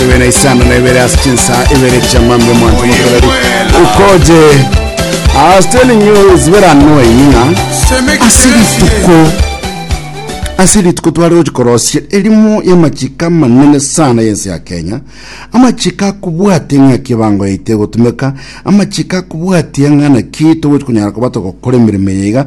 Ebe na isano na ibere ase chinsa ibere chiamambe mwanto mokoreri ukoje I was telling you it's very annoying ng'a ase rituko ase rituko tware gochi korosia erimo y'amachiko amanene sana y'ense ya kenya amachiko akobwatia ng'a kibango yaito egotumeka amachiko akobwatia ng'a naki togochi konyara koba togokora emeremo eye iga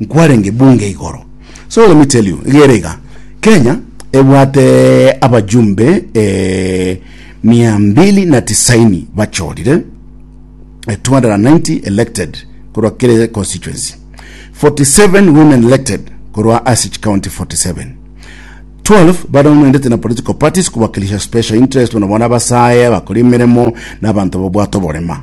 Nkwarenge bunge igoro. So let me tell you, igere iga, Kenya ebwate abajumbe eh, mia mbili na tisaini bachorire eh, 290 elected korwa kere constituency 47 women elected korwa ase county 47 12 baronoendete na political parties kubakilisha special interest bono bona basaye bakora emeremo na abanto babwate oborema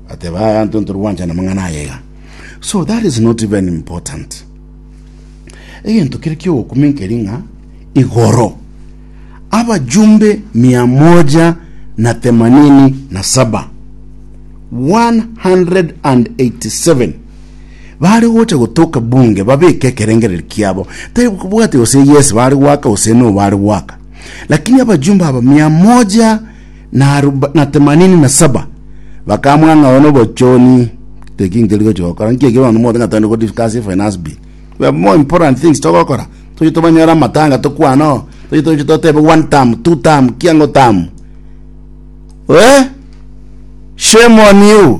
Bateba, Aya ntonto rwancha namang'ana aya iga, so that is not even important. Egento kere ki'ogokuma enkeri ng'a igoro abajumbe mia moja na themanini na saba 187 bari gocha gotoka bunge babeke ekerengereri kiabo tari bwate gose yes bari gwaka gose no bari gwaka lakini abajumbe aba mia moja na aruba- na temanini na saba bakamwa ng'a oyo nobochoni teki ntori gochi gokora nki ekero abanto mote ng'a togende go discuss finance bill we have more important things togokora toche tobanyore amatanga tokwane oo toche toche totebe one term two term kiango term eh shame on you